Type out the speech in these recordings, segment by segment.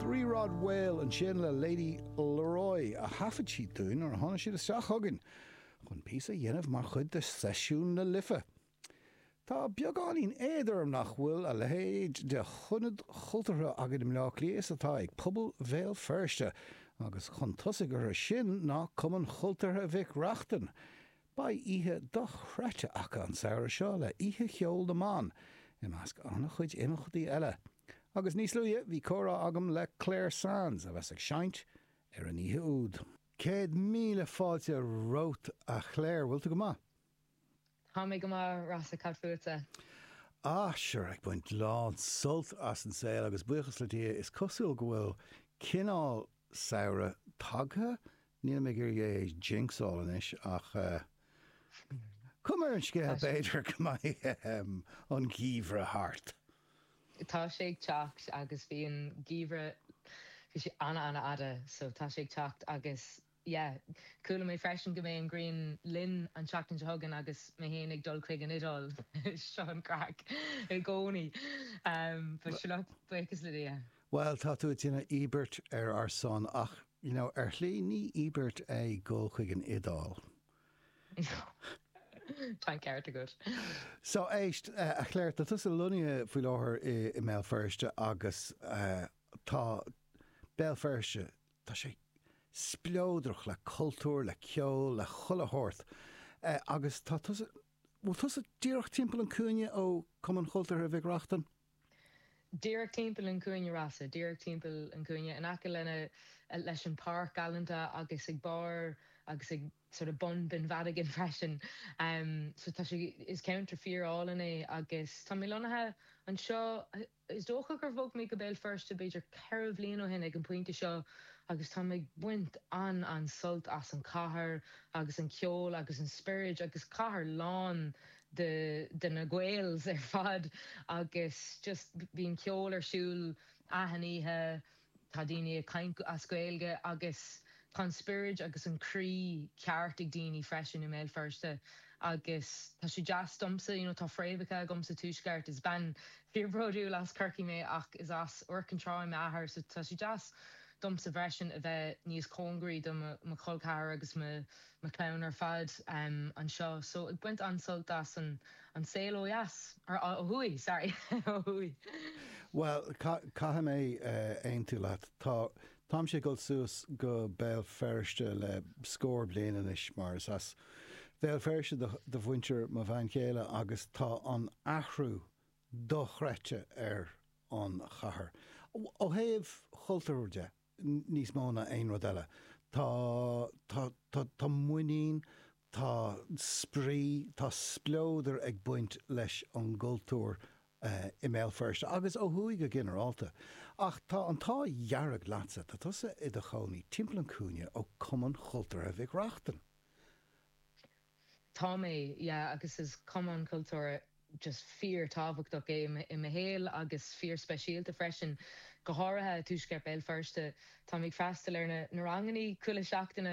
Three Rod Whale, ansin le Lady Leroy, a thaifead siad dúinn nuair a tháinig siad isteach chugainn chun píosa a dhéanamh mar chuid de Seisiún na Life. Tá beagáinín éad orm nach bhfuil a leithéid de ionad cultúrtha againn i mBleá Cliath is atá ag pobal Bhéal Feirste, agus chun tosaigh orthu sin ná Cumann Cultúrtha Mhic Reachtain, Beidh oíche dochreidte acu an samhradh seo le Oíche Cheol na mBan, i measc an-chuid imeachtaí eile. Agus níos luaithe bhí comhrá agam le Clare Sands, a bheas ag seinnt ar an oíche úd. Céad míle fáilte romhat a Clare, bhfuil tú go maith? Tá mé go maith, Rossa, cad fútsa? Ah, sure, ag baint lán sult as an saol agus buíochas le Dia, is cosúil go bhfuil cineál samhradh tagtha Nílim ag iarraidh é a jinxáil anois ach tá cuma ar an scéal b'fhéidir go mbeidh an geimhreadh thart. Tá sé ag teacht agus bhí an geimhreadh, bhí sé ana ana fhada so tá sé ag teacht agus yeah, chuala mé freisin go mbeidh an ghrian linn an tseachtain seo chugainn agus mé féin ag dul chuig an Iodáil, seo an craic i gcónaí but sure, buíochas le Dia. Bhuel, tá tú ag déanamh íobairt ar ár son ach You know, ar shlí ní íobairt é dul chuig an Iodáil. Tá an ceart agat. So éist, a Clare, tá tusa lonnaithe faoi láthair i mBéal Feirste agus tá Béal Feirste, tá sé spleodrach le cultúr, le ceol, le chuile shórt agus tá tusa, bhfuil tusa díreach timpeall an cúinne ó Cumann Cultúrtha Mhic Reachtain? díreach timpeall an chúinne Rossa, díreach timpeall an chúinne, in aice lena, leis an páirc Alexandra agus ag barr agus ag sort of bun Binn Mhadagáin freisin. So tá sé, is ceantar fíor álainn é agus tá mé lonnaithe anseo, is dócha gur bhog mé go Béal Feirste b'fhéidir ceithre bhliain ó shin ag an pointe seo agus táim ag baint an-, an-sult as an cathair agus an ceol agus an spioraid agus cathair lán de de na Gaels ar fad agus just bíonn ceol ar siúl achan oíche, tá daoine ag caint as Gaeilge agus tá an spioraid agus an croí ceart ag daoine freisin i mBéal Feirste agus tá sé deas domsa, you know tá fréamhacha agam sa tuaisceart, is bean fíor bródúil as Corcaigh mé ach is as Iúr Cinn Trá m'athair so tá sé deas domsa freisin a bheith níos cóngaraí do mo chol ceathrair agus mo mo chlann ar fad anseo so ag baint an-sult as an saol ó dheas, or ó thuaidh, sorry, ó thuaidh. Bhuel, caithfidh mé aontú leat. Tá, táimse ag dul suas go Béal Feirste le scór bliain anois mar is as Bhéal Feirste do mhuintir mo bhean chéile agus tá an athrú dochreidte ar an chathair ó thaobh chultúir de. níos mó ná aon rud eile. Tá, tá, tá, tá muinín, tá spraoi, tá spleodar ag baint leis an gcultúr i mBéal Feirste agus ó thuaidh go ginearálta. Ach tá an t-ádh dhearg leatsa, tá tusa i do chónaí timpeall an chúinne ó Cumann Chultúrtha Mhic Reachtain. Tá mé, yeah, agus is cumann cultúrtha just fíor-tábhachtach é i mo shaol agus fíor-speisialta freisin, go háirithe i dtuaisceart Béal Feirste. Táim ag freastal ar na rangannaí chuile seachtaine,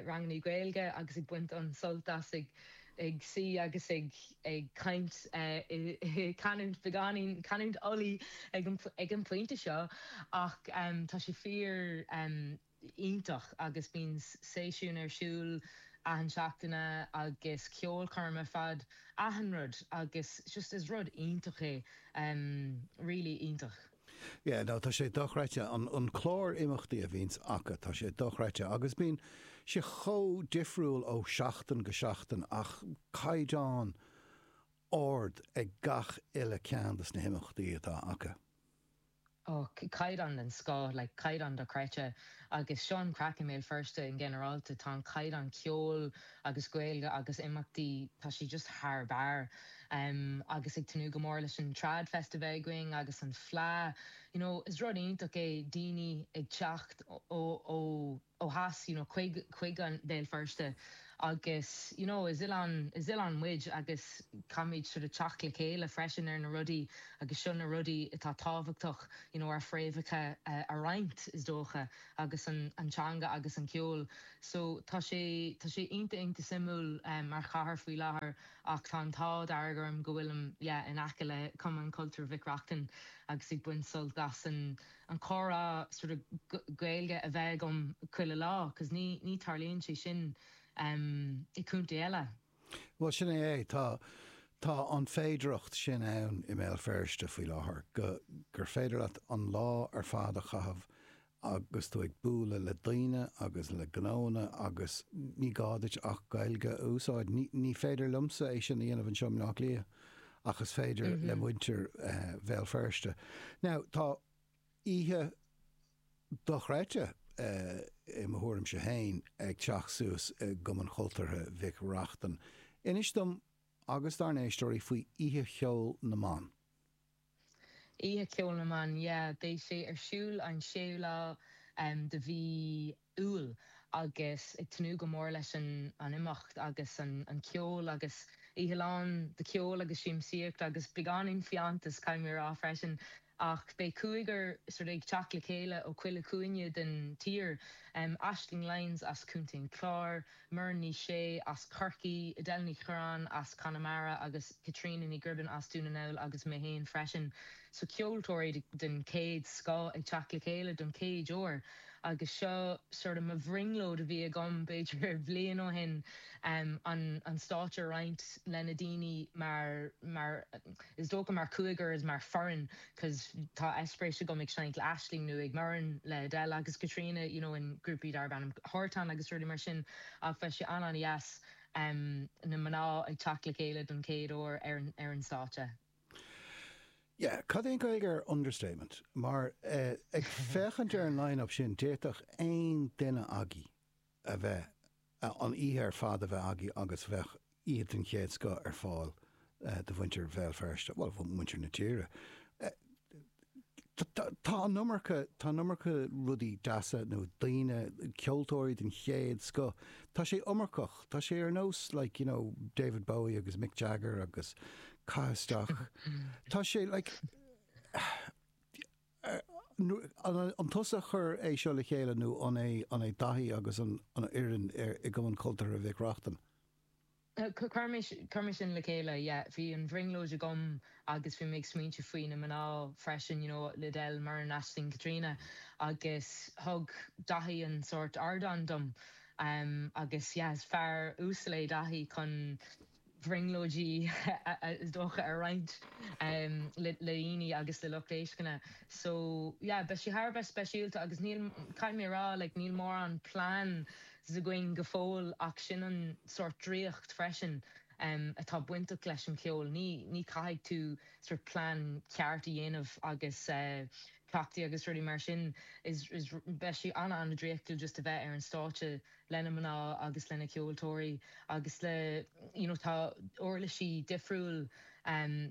rangannaí Gaeilge, agus ag baint an-sult as ag suí agus ag caint i canúint beagáinín, canúint Ulaidh ag an phointe seo, ach tá sé fíor. iontach agus bíonn seisiúin ar siúl achan seachtaine agus ceolchoirm ar fad achan rud agus just is rud iontach é really iontach. Yeah no tá sé dochreidte an clár imeachtaí a bhíonns acu tá sé dochreidte agus bíonn sé chomh difriúil ó seachtain go seachtain ach caighdeán ard ag gach uile ceann dos na himeachtaí atá acu. ó chaighdeán den scoth, like caighdeán dochreidte, agus seo an chraic i mBéal Feirste in ginearálta, tá an caighdeán ceoil agus Gaeilge agus imeachtaí, tá sé just thar barr. Em agus ag tnúth go mór leis an Trad Fest a bheith againn agus an Fleadh, you know is rud iontach é daoine ag teacht ó, ó, ó, ó dheas you know chuig chuig Béal Feirste agus you know is oileán is oileán muid agus caithfimid sort of teacht le chéile freisin ar na rudaí agus seo na rudaí atá tábhachtach you know ár fréamhacha a roinnt is dócha agus an an teanga agus an ceol so tá sé tá sé iontach iontach suimiúil mar chathair faoi láthair ach tá an t-ádh dearg orm go bhfuilim yeah in aice le Cumann Cultúir Mhic Reachtain agus ag baint sult as an an comhrá sort of Gaeilge a bheith agam chuile lá cos ní ní tarlaíonn sé sin em i contae eile. Bhuel sin é é, tá tá an féidireacht sin ann i mBéal Feirste faoi láthair go gur féidir leat an lá ar fad a chaitheamh agus tú ag bualadh le daoine agus le gnóanna agus ní gá duit ach Gaeilge a úsáid. Ní ní féidir liomsa é sin a dhéanamh anseo i mBleá Cliath. ach is féidir le muintir Bhéal Feirste. Now, tá oíche dochreidte, i mo thuairimse féin, ag teacht suas i gCumann Chultúrtha Mhic Reachtain. Inis dom agus dár n-éisteoirí faoi Oíche Cheoil na mBan. Oíche Cheoil na mBan, yeah. Beidh sé ar siúl an séú lá de mhí Iúil agus ag tnúth go mór leis an imeacht agus an ceol agus oíche lán de cheol agus siamsaíocht agus beagáinín fiántas, caithfidh mé a rá freisin. Ach beidh cúigear sort ag teacht le chéile ó chuile chúinne den tír, Aisling Lyons as Contae an Chláir, Muireann Ní Shé as Corcaigh, Edel Ní Churraoin as Conamara agus Caitríona Ní Ghribín as Dún na nGall agus mé féin freisin. So ceoltóirí den chéad scoth ag teacht le chéile don chéad uair agus seo sort of mo bhrionglóid a bhí agam b'fhéidir bhliain ó shin an stáitse a roinnt le na daoine mar is dócha mar chúigear is mar foireann. 'cos tá eispéiris agam ag seinnt le Aisling nó ag Muireann le Edel agus Caitríona you know in grúpaí darb ainm Huartan agus rudaí mar sin ach beidh sé an-an-dheas na mná ag teacht le chéile don chéad uair ar an stáitse. Yeah, cad é an Gaeilge ar understatement? Mar ag féachaint ar an line-up sin d'fhéadfadh aon duine agaibh. a bheith, an oíche ar fad a bheith agaibh agus bheadh oíche den chéad scoth ar fáil do mhuintir Bhéal Feirste, bhuel, mhuintir na tíre. Tá an iomarca, tá an iomarca rudaí deasa nó daoine, ceoltóirí den chéad scoth, tá sé iomarcach, tá sé ar nós like, you know, David Bowie agus Mick Jagger agus caith isteach, tá sé like, An tusa a chuir é seo le chéile nó an é Daithí agus an fhoireann i gCumann Cultúrtha Mhic Reachtain? Chuireamar sin le chéile, yeah. Bhí an bhrionglóid agam agus bhí mé ag smaointiú faoi na mná freisin, you know, le Edel, Muireann, Aisling, Caitríona agus thug Daithí an sórt ardán dom agus yeah, is fear uasal é Daithí chun. bhrionglóidí is dócha a roinnt le daoine agus le lucht éisteachta. So yeah beidh sí thar a bheith speisialta agus níl, caithfidh mé a rá, like níl mórán plean againn go fóill ach sin an sort draíocht freisin atá bainteach leis an cheol. Ní ní caithfidh tú sort plean ceart a dhéanamh agus cleachtaí agus rudaí mar sin is is beidh sí ana ana draíochtúil just a bheith ar an stáitse le na mná agus le na ceoltóirí agus le you know tá uirlisí difriúil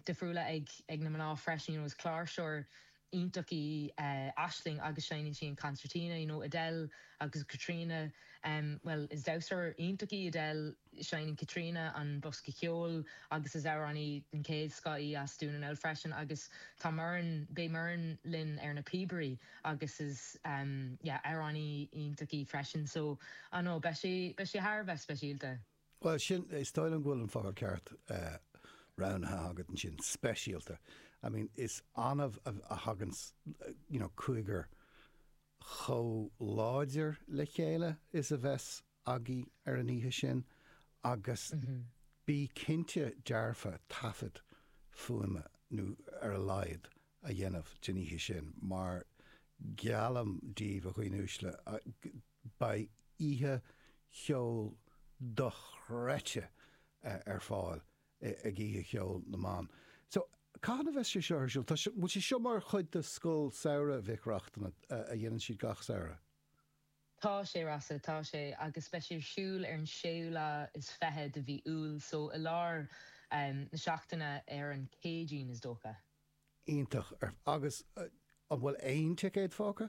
difriúla ag ag na mná freisin you know is cláirseoir iontach í Aisling agus seinneann sí an concertina you know Edel agus Caitríona bhuel is damhsóir iontach í Edel Seineann Caitríona an bosca ceoil agus is amhránaí den chéad scoth í as Dún an Fheabhail freisin agus tá Muireann, beidh Muireann linn ar na píobaí agus is yeah amhránaí iontach í freisin so I know beidh sé, beidh sé thar a bheith speisialta. Bhuel sin, is dóigh liom go bhfuil an focal ceart roghnaithe agat ansin, speisialta. I mean is annamh a thagann you know cúigear chomh láidir le chéile is a bheas agaibh ar an oíche sin agus bígí cinnte dearfa taifead fuaime nó ar a laghad a dhéanamh den oíche sin mar geallaim daoibh a dhaoine uaisle beidh oíche cheoil dochreidte ar fáil ag oíche cheoil na mban. So cathain a bheas sé seo ar siúl? Tá, an bhfuil sé seo mar chuid de scoil samhraidh Mhic Reachtain a dhéanann siad gach samhradh? Tá sé, Rossa, tá sé agus beidh sé ar siúl ar an séú lá is fiche de mhí Iúil so i lár na seachtaine ar an gCéadaoin is dócha. Iontach. Agus an bhfuil aon ticéad fágtha?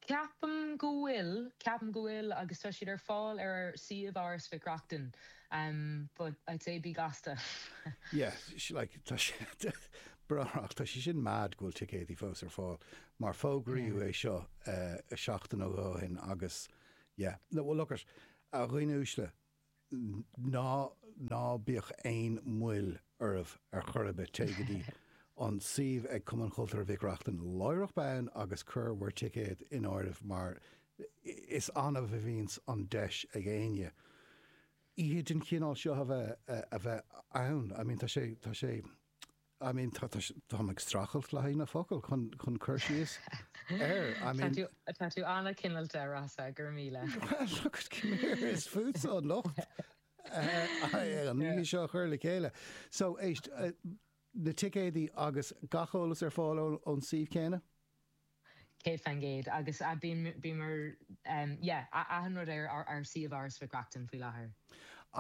Ceapaim go bhfuil, ceapaim go bhfuil agus tá siad ar fáil ar ár suíomh Áras Mhic Reachtain but I'd say bí gasta. Yeah, like tá sé barrúil, tá sé sin mad go bhfuil ticéidí fós ar fáil mar fógraíodh é seo seachtain nó dhó ó shin agus yeah, no, well look it, a dhaoine uaisle, ná, ná bíodh aon mhoill oraibh ar chor ar bith, téigh go dtí an suíomh ag Cumann Cultúrtha Mhic Reachtain láithreach bonn agus cuir bhur ticéad in áirithe mar is annamh a bhíonns an deis ag éinne oíche den chineál seo a bheith, a bheith ann, I mean tá sé, tá sé. I mean tá tá táim ag streachailt le haghaidh na focal chun chun cur síos air. I mean. Tá tú tá tú ana-chineálta Rossa, go raibh míle. Well look it come here is fútsa an locht na nithe seo a chur le chéile. So éist na ticéadaí agus gach eolas ar fáil ón suíomh céanna? 100 faoin gcéad agus a bíonn bíomar yeah achan rud ar ár suíomh Áras Mhic Reachtain faoi láthair.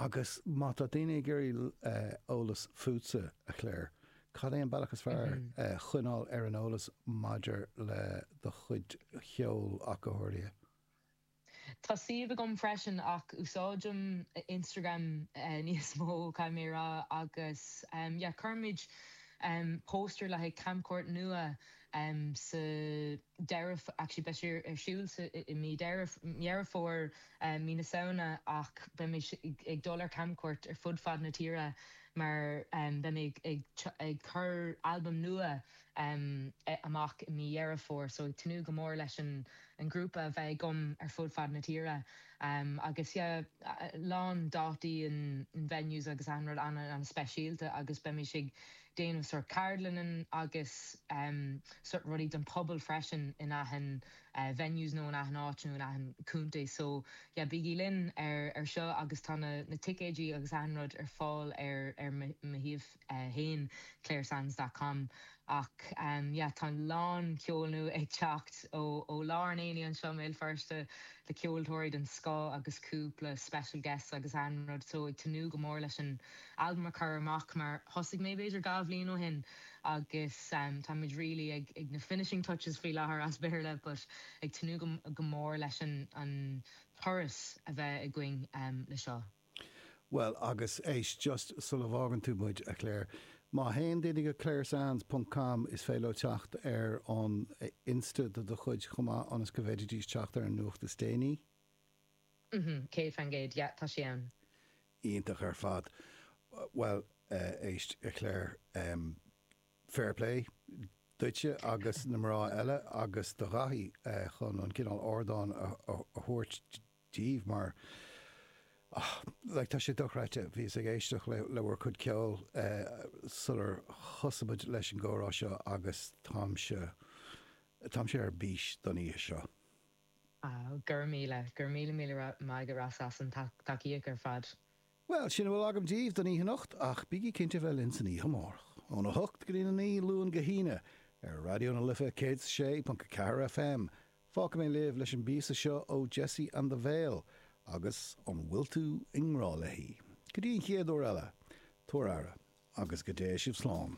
Agus má tá daoine ag iarraidh eolais fútsa, a Clare, cad é an bealach is fearr choinneáil ar an eolas maidir le do chuid cheoil ach go háirithe? Tá suíomh agam freisin ach úsáidim Instagram níos mó, caithfidh mé a rá, agus yeah cuirimid póstaer le haghaidh camchuairt nua sa deireadh, actually beidh sé ar siúl i mí Deireadh, Dheireadh Fómhair, mí na Samhna ach beimid ag dul ar camchuairt ar fud fad na tíre mar beidh mé ag ag cur albam nua. ehm, amach i mí Dheireadh Fómhair so ag tnúth go mór leis an grúpa a bheith agam ar fud fad na tíre ehm, agus yeah a lán dátaí in venues agus achan rud an-an-speisialta agus beidh muid ag déanamh sort ceardlanna agus ehm, sort rudaí don pobal freisin in achan venues nó in achan áit nó in achan contae so yeah bígí linn ar seo agus tá na ticéidí agus achan rud ar fáil ar mo shuíomh. 1, claresands dot com Ach yeah tá a lán ceol nua ag teacht ó ó lár an aonaigh anseo i mBéal Feirste le ceoltóirí den scoth agus cúpla special guests agus achan rud so ag tnúth go mór leis an albam a chur amach mar thosaigh mé b'fhéidir dhá bhliain ó shin agus tá muid really ag ag na finishing touches faoi láthair as Béarla but ag tnúth go go mór leis an an turas a bheith againn le seo. Bhuel, agus éist, just sula bhfágann tú muid, a Clare, má théann daoine go claresands ponc com is féidir leo teacht ar an Insta do do chuid chomh maith ionas go bhféadfaidís teacht ar an nuacht is déanaí. Mm-hmm, céad fan gcéad, yeah, tá sé ann. Iontach ar fad. Bhuel, éist, a Clare, fair play duitse agus na mná eile agus do Dhaithí chun an cineál ardáin a thabhairt díobh mar, ah, like, tá sé dochreidte, bhíos ag éisteacht le, le bhur gcuid ceoil eh sular thosaigh muid leis an gcomhrá seo agus táimse, táimse ar bís don oíche seo. Ah, go raibh míle, go raibh míle míle maith agat Ross as ucht an tacaíocht ar fad. Bhuel, sin a bhfuil agam díbh don oíche anocht ach bígí cinnte a bheith linn san oíche amárach, óna hocht go dtína naoi, Luan go hAoine, ar Raidió na Life 106.4 FM. Fágfaidh mé libh leis an bpíosa seo ó Jessie and the Veil agus An bhfuil tú i ngrá léi? Go dtí an chéad uair eile, tabhair abhaile agus go dtéigh sibh slán.